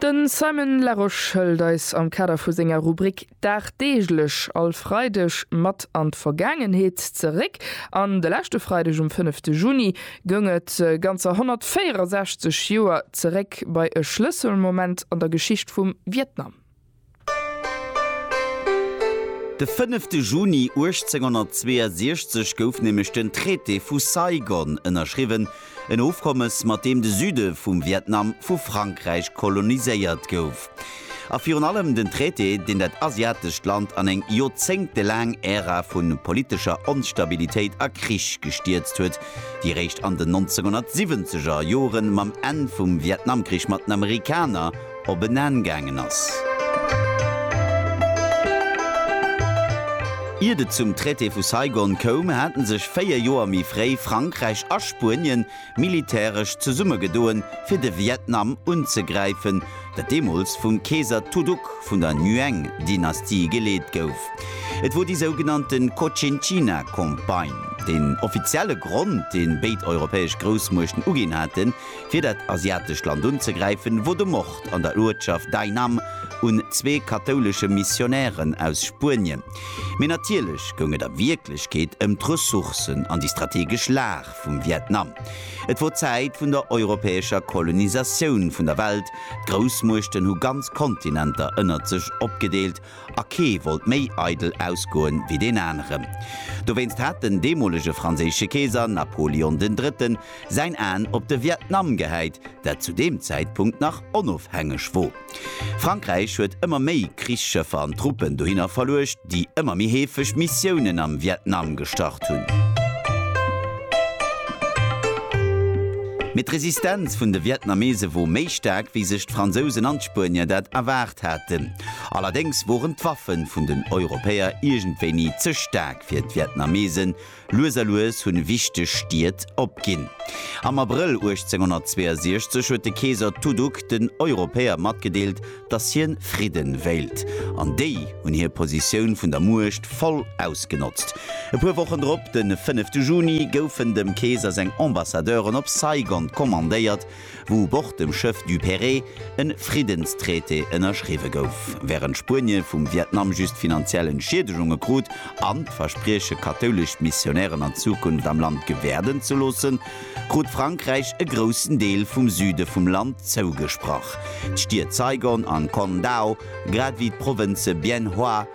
Den Simon Larosche hëlt eis am Kader vu senger Rubrik Dagdeeglech all Freideg mat an d'Vergaangenheet zeréck. An de leschte Freideg um fënnefte Juni goung et ganzer 164 Joer zeréck bei e Schlësselmoment an der Geschicht vum Vietnam. De fënnefte Juni 1862 gouf nämlech den Traité vu Saigon ënnerschriwwen, en Ofkommes, mat deem de Süde vum Vietnam vu Frankräich koloniséiert gouf, a virun allem den Traité, deen dat asiatescht Land an eng joerzéngtelaang Ära vu politescher Onstabilitéit a Krich gestierzt huet, déi eréischt an den 1970er Jore mam Enn vum Vietnamkrich mat den Amerikaner, op en Enn gaangen ass. Iert et zum Traité vu Saigon koum, hate sech véier Joer méi fréi Frankräich a Spuenien militäresch zesummegedoen, fir de Vietnam unzegräifen, dat deemools vum Keeser Tu Duc vun der Nguyen-Dynastie geleet gouf. Et wor déi sougenannte Cochinchina-Campagne. Den offizielle Grond, dee béid europäesch Groussmuechten uginn haten, fir dat asiatescht Land unzegräifen, wou de Mord an der Uertschaft Dai Nam un zwee kathoulesche Missionären aus Spuenien, mee natierlech goung et a Wierklechkeet ëm d'Ressourcen an déi strategesch Lag vum Vietnam. Et wor d'Zäit vun der europäescher Kolonisatioun vun der Welt, d'Groussmuechten hu ganz Kontinenter ënnert sech opgedeelt a kee wollt méi eidel ausgoen wéi deen aneren. Dowéinst hat den deemolege franséische Keeser Napoleon den Drëtten säin Aen op de Vietnam gehäit, dat zu deem Zäitpunkt nach onofhängeg wor. Frankräich huet ëmmer méi Krichsschëffer an Truppen dohinner verluecht, déi ëmmer méi heefeg Missiounen am Vietnam gestart hunn. Mee d'Resistenz vun de Vietnamese wor méi staark, wéi sech d'Fransousen an d'Spuenier dat erwaart haten. Allerdéngs woren d'Waffen vun den Europäer iergendwéi ni ze staark fir d'Vietnamesen. Lues a lues hunn wichteg Stied opginn. Am Abrëll 1862 huet de Keeser Tu Duc den Europäer matgedeelt, dass hien Fridden wéilt. An déi hunn hir Positioun vun der Muecht voll ausgenotzt. E puer Wochen drop, den fënnefte Juni, goufen dem Keeser seng Ambassadeuren op Saigon kommandéiert, wou u Bord dem Schëff Duperré e Friddenstraité ënnerschriwwe gouf, wärend Spuenie vum Vietnam just finanziell Entschiedegunge krut an d'Versprieche kathoulesch Missionären an Zukunft am Land gewäerden ze loossen, krut Frankräich e groussen Deel vum Süde vum Land zougesprach, d'Stied Saigon an Con Dao, grad ewéi d'Provënze Bien Hoa,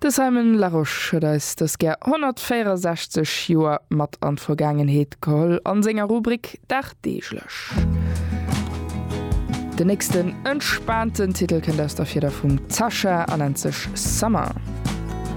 De Simon Larosche huet eis dës gär 164 Joer mat an d'Vergaangenheet geholl a senger Rubrik Dagdeeglech. Den nächsten entspaanten Titel kënnt aus der Fieder vum Zacha a nennt sech Summer.